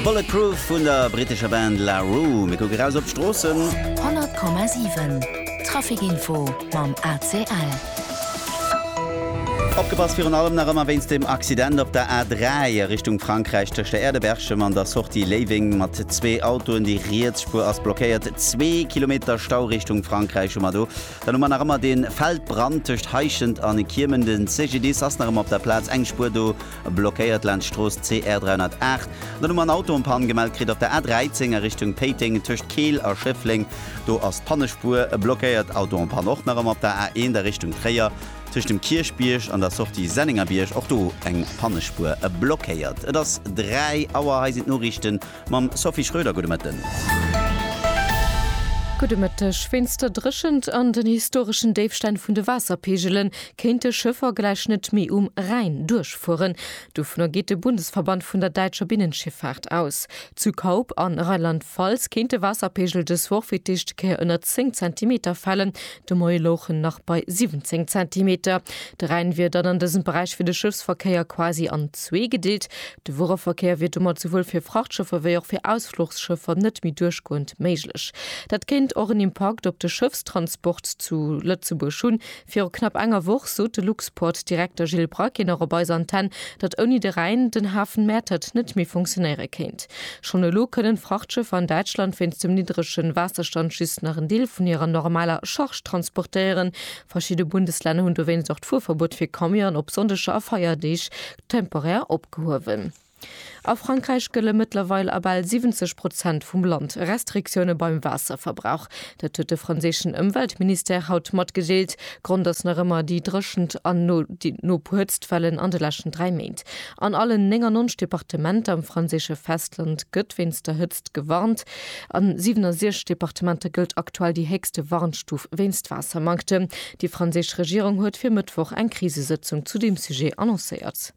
Bulletproof vun der brittescher Band La Roue. Mir kucke raus op d'Stroossen. 100,7 Traficinfo mam ACL. Opgepasst, virun allem nach ëmmer wéinst dem Accident op der A3 a Richtung Frankräich tëscht der Aire de Berchem an der Sortie Léiweng mat zwee Autoen. Déi riets Spuer ass blockéiert. Zwee Kilometer Stau Richtung Frankräich hu mer do. Dann hu mer nach ëmmer dee Feldbrand tëscht Heischent an Kiemen. Den CGDIS ass nach ëmmer op der Plaz. Eng Spuer do. Blockéiert laanscht d'Strooss CR 308. Den Numm an Auto en panne gemellt kritt op der A 13 a Richtung Péiteng tëscht Keel a Schëffleng. Do ass d'Pannespuer blockéiert. Auto en panne och nach ëmmer op der A 1 a Richtung Tréier tëscht dem Kierchbierg an der Sortie Sennengerbierg. Och do eng Pannespuer blockéiert. Et ass 3 Auer. Hei sinn d'Noriichten. Mam Sophie Schröder, gudde Mëtten. Gudde Mëtteg. Wéinst der Dréchent an den historeschen Déifstänn vun de Waasserpeegelen kéinte Schëffer gläich net méi um Rhäin duerchfueren. Dovunner geet de Bundesverband vun der däitscher Binnenschiffaart aus. Zu Kaup a Rheinland-Pfalz kéint de Waasserpeegel dës Woch fir d'éischte Kéier ënner 10 Zentimeter falen, De Moie louch en nach bei 17 Zentimeter. De Rhäin wier dann an dësem Beräich fir de Schëffsverkéier quasi an zwee gedeelt. De Wuereverkéier wier domat souwuel fir Frachtschëffer wéi och fir Ausfluchsschëffer net méi duerchgoend méiglech. Dat kéint och en Impakt op de Schëffstransport zu Lëtzebuerg hunn. Viru knapp enger Woch sot de Luxport-Direkter Gilles Braquet nach op eiser Antenn, datt ouni de Rhäin den Hafen Mäertert net méi funktionéiere kéint. Schonn elo kënnen Frachtschëffer an Däitschland wéinst dem niddregen Waasserstand just nach en Deel vun hirer normaler Charge transportéieren. Verschidde Bundeslänner hunn dowéinst och d'Fuerverbuet fir Camionen op Sonndeger a Feierdeeg temporär opgehuewen. A Frankräich gëlle mëttlerweil a bal 70 Prozent vum Land Restriktioune beim Waasserverbrauch. Dat huet de franséischen Ëmweltministère haut matgedeelt. Grond ass nach ëmmer déi dréchent an no Hëtztwellen an de leschten dräi Méint. An allen 99 Departementer am franséische Festland gëtt wéinst der Hëtzt gewarnt. A 67 Departementer gëllt aktuell déi héchste Warnstuf wéinst Waassermanktem. Déi franséisch Regierung huet fir Mëttwoch eng Krisesëtzung zu deem Sujet annoncéiert.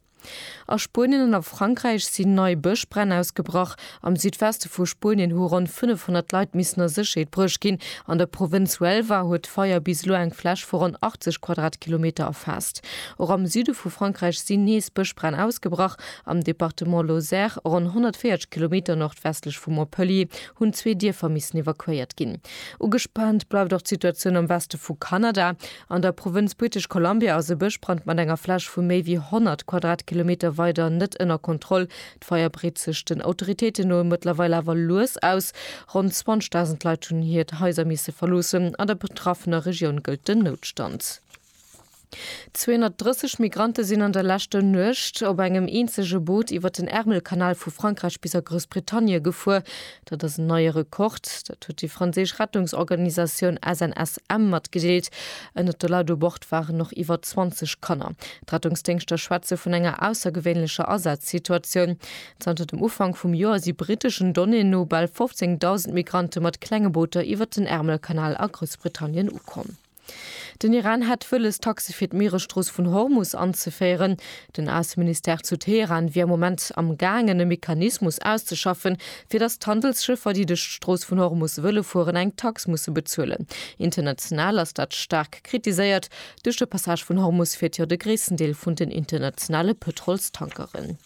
A Spuenien an a Frankräich sinn nei Bëschbränn ausgebrach. Am Südweste vu Spuenien hu ronn 500 Leit missen a Sécherheet bruecht ginn. An der Provënz Huelva huet d'Feier bis elo eng Fläch vu ronn 80 Quadratkilometer erfaasst. Och am Süde vu Frankräich sinn nees Bëschbränn ausgebrach. Am Departement Lozère, ronn 140 Kilometer nordwestlech vu Montpellier, hunn zwee Dierfer missen evakuéiert ginn. Ugespaant bleift och d'Situatioun am Weste vu Kanada. An der Provënz British Columbia ass e Bëschbrand mat enger Fläch vu méi wéi 100 Quadratkilometer weider net ënner Kontroll. D'Feier breet sech den Autoritéiten no mëttlerweil awer lues aus. Ronn 20.000 Leit hunn hiert Haiser misse verloossen. An der betraffener Regioun gëllt den Noutstand. 230 Migrante sinn an der leschter Nuecht op engem eenzege Boot iwwer den Ärmelkanal vu Frankräich bis a Groussbritannie gefuer. Dat ass en neie Rekord. Dat huet déi franséisch Rettungsorganisatioun SNSM matgedeelt. Ënner de Leit u Bord waren och iwwer 20 Kanner. D'Rettungsdéngschter schwätze vun enger aussergewéinlecher Asazsituatioun. Zanter dem Ufank vum Joer si briteschen Donnéeën no bal 15.000 Migrante mat klenge Booter iwwer den Ärmelkanal a Groussbritannien ukomm. Den Iran hätt wëlles, Taxe fir d'Mieresstrooss vun Hormus anzeféieren. Den Ausseministère zu Teheran wier am Moment am gaangen, e Mechanismus auszeschaffen, fir datt d'Handelsschëffer, déi duerch d'Strooss vun Hormus wëlle fueren, eng Tax musse bezuelen. International ass dat staark kritiséiert. Duerch de Passage vun Hormus fiert jo de gréissten Deel vun den internationale Pëtrolstankeren.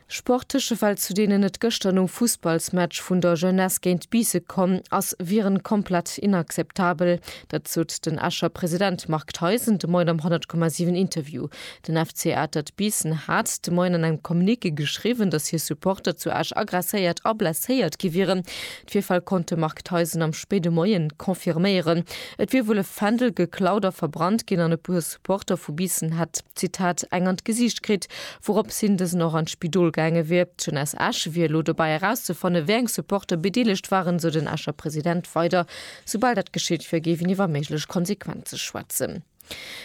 Sport Tësche Well zu deenen et gëschter nom Fussballsmatch vun der Jeunesse géint Biisse komm ass, wieren komplett inakzeptabel. Dat sot den Escher President Marc Theisen de Moien am 100,7 Interview. Den FC Atert Biissen hat de Moien an engem Communiqué geschriwwen, datt hir Supporter zu Esch agresséiert a blesséiert gi wieren. D'Virfäll konnt de Marc Theisen am spéide Moie confirméieren. Et wier wuel e Fändel geklaut a verbrannt ginn an e puer. D'Porter vu Biissen hätt, Zitat, eng an d'Gesiicht kritt, wouropps hien dësen och an d'Spidol gaange wier. D'Jeune aus Esch wier elo dobei erauszefanne wéi eng Supporter bedeelegt waren, sou den Escher President weider. Soubal dat geschitt wier, géif een iwwer méiglech Konsequenze schwätzen.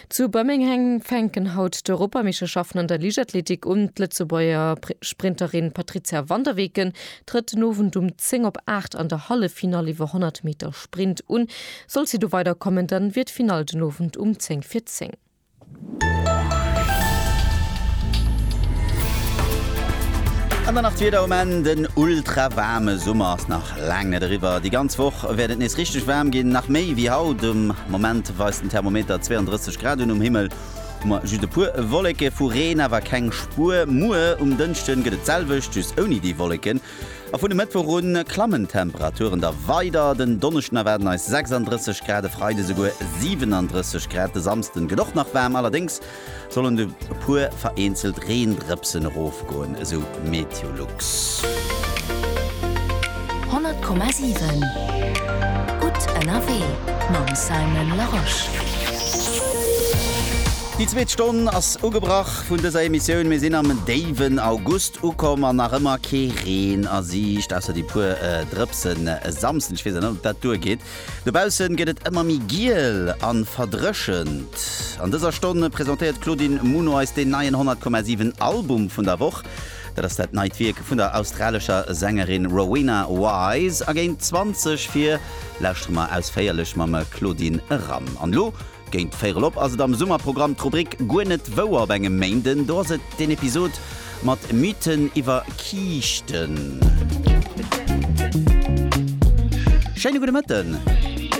Zu Birminghang fänken haut d'Europameeschterschaften an der Liichtathletik un. D'Lëtzebuerger Sprinterin Patrizia van der Weken Trëtt den Owend um 10 op 8 an der Halleffinall iwwer 100 Meter Sprint un. Sollt si do weider kommen, dann wier d'Finall den Owend um 10 fir 10. An dann nach d'Wieder um Enn, Den ultra waarme Summer ass nach laang net eriwwer. Déi ganz Woch wäert et nees richteg waarm ginn, nach méi wéi haut. Um Moment weist den Thermometer 32 Grad un um Himmel. Moi, just e puer Wolleke, vu Reen awer keng Spuer. Muer um Dënschden gëtt et d'selwecht, just ouni déi Wolleken. A vun e Mëttwoch un klammen d'Temperaturen da weider. Den Donneschden erwaarden eis 36 Grad, e Freide souguer 37 Grad. De Samsden gëtt och nach waarm, allerdéngs sollen e puer vereenzelt Reendrëpsen erof. Goen esou Meteolux. 100,7 Gutt ënnerwee mam Simon Larosche. Déi zweet Stonn ass ugebrach vun dëser Emissioun. Mir sinn am déiwen August ukomm an nach ëmmer kee Reen a Siicht, ausser déi puer Drëpsen e Samsden. Ech weess awer net, ob dat duergeet. Dobaussen gëtt et ëmmer méi giel an verdréchent. An dëser Stonn presentéiert d'Claudine Muno eis deen neien 100,7 Album vun der Woch. Dat ass dat neit Wierk vun der australescher Sängerin Rowena Wise a géint 20 vir. Lauschtere mer ausféierlech mam Claudine eran. An elo Géint véier erop ass et am Summerprogramm d'Rubrik Guer net wouer op engem Méinden. Do ass et den Episod mat Mythen iwwer Kiischten. Schéine gudde Mëtten!